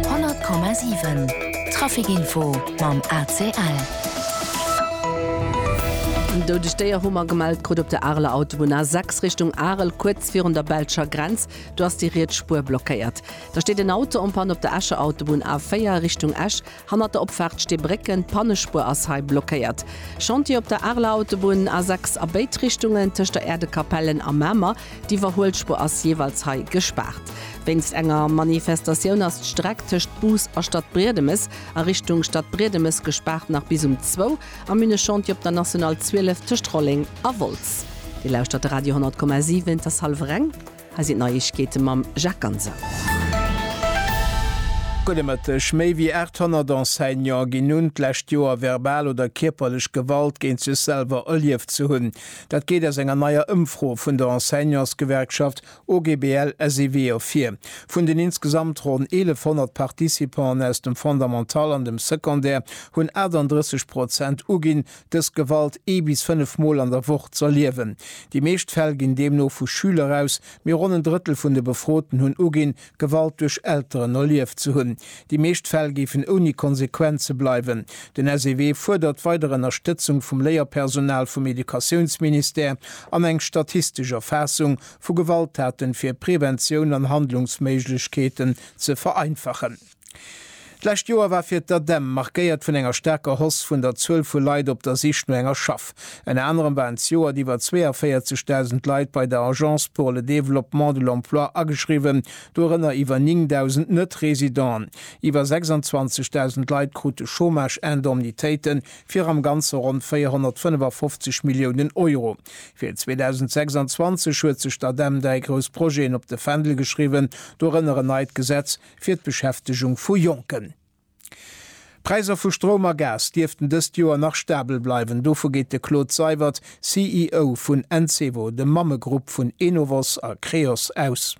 100,7 Trafikinfo mam ACL. Eng doudeg Déier hu mer gemellt krut op der Areler Autobunn A6 Richtung Arel, kuerz virun der belscher Grenz. Do ass déi riets Spuer blockéiert. Da steet en Auto en Panne op der Escher Autobunn A4 Richtung Esch. Hannert der Opfaart sti Brécken, d'Pannespuer ass hei blockéiert. Chantier op der Areler Autobunn, A6 a béid Richtungen, tëscht der Äerdekapellen a Mamer. D'Iwwerhuelspuer ass jeeweils hei gespaart. Wéinst enger Manifestatioun ass d'Streck tëscht Bus a Stadbriedemes a Richtung Stadbriedemes gespaart nach bis um zwou. Am Minnechantier op der National 12 tëscht Rolleng a Wolz. Dir lauschtert de Radio 100,7, et ass hallwer eng. Hei sinn d'Neiegkeete mam Jacques Ganser. Gudde Mëtteg. Méi wéi 800 Enseignante ginn un, d'lescht Joer verbal oder kierperlech Gewalt géint sech selwer erlieft ze hunn. Dat geet aus enger neier Ëmfro vun der Enseignantsgewerkschaft OGBL-SEW ervir. Vun den insgesamt ronn 1.100 Participanten aus dem Fondamental an dem Secondaire hunn 38 Prozent uginn, dës Gewalt ee bis fënnef Mol an der Woch z'erliewen. Déi meescht Fäll ginn deemno vu Schüler aus, mee ronn en Drëttel vun de Befroten hunn uginn, Gewalt duerch Elteren erlieft ze hunn. Déi meescht Fäll géifen ouni Konsequenze bleiwen. Den SEW fuerdert weider Ënnerstëtzung vum Léierpersonal vum Educatiounsministère an eng statistesch Erfaassung vu Gewalttaten, fir Preventioun an Handlungsméiglechkeeten ze vereinfachen. D'lescht Joer war fir d'ADEM markéiert vun enger staarker Hausse vun der Zuel vu Leit op der Sich no enger Schaff. Ënner anerem waren d'Joert iwwer 42.000 Leit bei der Agence pour le développement de l'emploi ageschriwwen, dorënner iwwer 9.000 Net-Residenten. Iwwer 26.000 Leit krute Chômage-Indemnitéiten fir am Ganze ronn 455 Milliounen Euro. Fir 2026 huet sech d'ADEM dräi grouss Projeten op de Fändel geschriwwen, dorënner en neit Gesetz fir d'Beschäftegung vu Jonken. D'Präiser vu Stroum a Gas dierften dëst Joer nach stabel bleiwen, dovu geet de Claude Seywert, CEO vun Encevo, dem Mammegrupp vun Enovos a Creos, aus.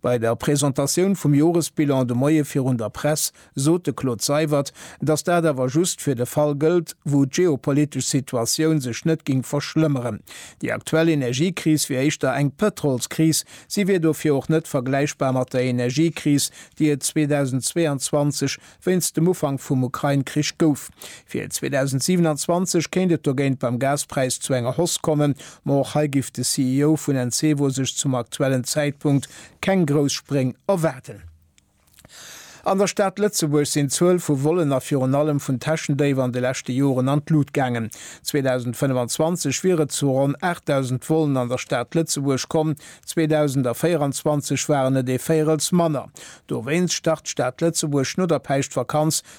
Bei der Presentatioun vum Joresbilan de Moie virun der Press sot de Claude Seywert, datt dat awer just fir de Fall gëllt, wou d'geopolitesch Situatioun sech net géing verschlëmmeren. Déi aktuell Energiekris wier éischter eng Pëtrolskris, Si wier dofir och net vergläichbar mat der Energiekris, déi et 2022 wéinst dem Ufank vum Ukrain-Krich gouf. Fir 2027 kéint et dogéint beim Gaspräis zu enger Hausse kommen, ma och hei giff de CEO vun Encevo sech zum aktuellen Zäitpunkt keng grouss Spréng erwaarden. An der Stad Lëtzebuerg sinn d'Zuel vu Vollen a virun allem vun Täschendéif an de leschte Joren an d'Lut gaangen. 2025 wier et zu ronn 8.000 Vollen an der Stad Lëtzebuerg komm, 2024 waren et ee Véirels manner. Dowéinst start d'Stad Lëtzebuerg no der Päischtvakanz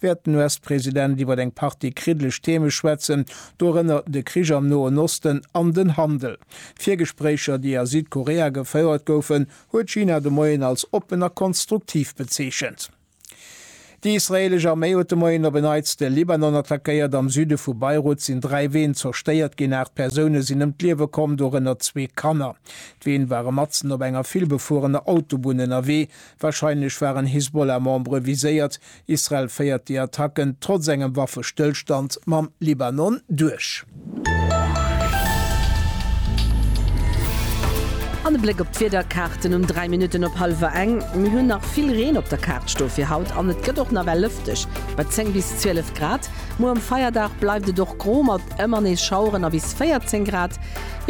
wäert den US-President iwwer eng Partie kriddeleg Theme schwätzen, dorënner de Krich am Noen Osten an den Handel. D'Virgespréicher, déi a Südkorea gefouert goufen, huet China de Moien als oppen a konstruktiv bezeechent. Déi israeelesch Arméi huet de Moien op en Neits de Libanon attackéiert. Am Süde vu Beirut sinn dräi Ween zerstéiert ginn, aacht Persoune sinn ëm d'Liewe komm, dorënner zwee Kanner. D'Ween ware matzen op enger villbefuerener Autobunn ënnerwee. Warscheinlech waren Hisbollah-Membere viséiert. Israel féiert déi Attacken trotz engem Waffestëllstand mam Libanon duerch. An e Bléck op d'Wiederkaarten um 3 Minutten op hallwer eng. Mir hunn nach vill Reen op der Kaart sto fir haut an et gëtt och nawell lëfteg bei 10 bis 12 Grad. Muer um Feierdag bleift et och gro mat ëmmer nees Schaueren a bis 14 Grad.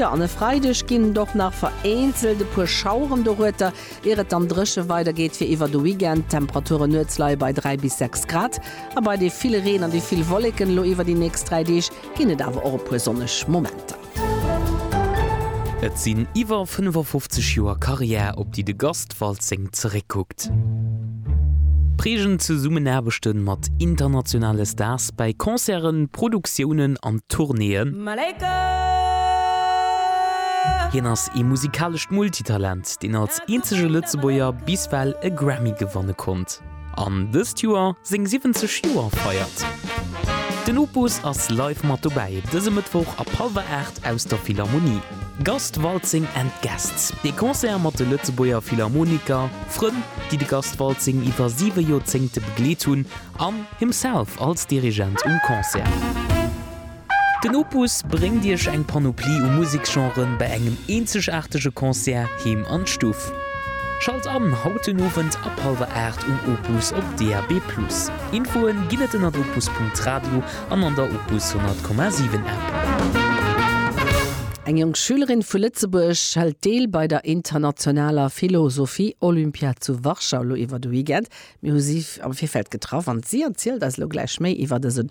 Jo, an e Freideg ginn et och nach vereenzelt e puer Schaueren, dorueter Ier et dann dréche weider geet fir iwwer de Weekend. D'Temperaturen nuets leie bei 3 bis 6 Grad. A bei dee ville Reen an déi vill Wolleken elo iwwer déi nächst 3 Deeg ginn et awer och e puer sonneg Momenter. Et sinn iwwer 55 Joer Karriär, op déi de Gast Waltzing zeréckkuckt. Prägend Zesummenaarbechte mat internationale Stars bei Concerten, Produktiounen an Tournéeën. Hien ass ee musikalescht Multitalent. West, deen als eenzege Lëtzebuerger bis well e Grammy gewanne konnt an dëst Joer seng 70 Joer feiert. Den Opus ass live mat dobäi dëse Mëttwoch ab hallwer 8 aus der Philharmonie. Gast Waltzing and Guests, ee Concert mat de Lëtzebuerger Philharmoniker, Frënn, déi de Gast Waltzing iwwer siwe Joerzéngte begleet hunn, an himself als Dirigent um Concert. Den Opus bréngt Iech eng Panoplie u Museksgenren bei engem eenzegaartege Concert heem an d'Stuff. Schalt an haut den Owend ab hallwer 8 um Opus op DAB+. Infoen ginn et ënnert opus.radio an an der Opus 100,7 App. Eng jonk Schülerin vu Lëtzebuerg hëlt deel bei der internationaler Philosophie Olympiad zu Warschau lo iwwer de Weekend. Mir hu si am Virfeld getraff an si erzielt eis lo gläich méi iwwer dësen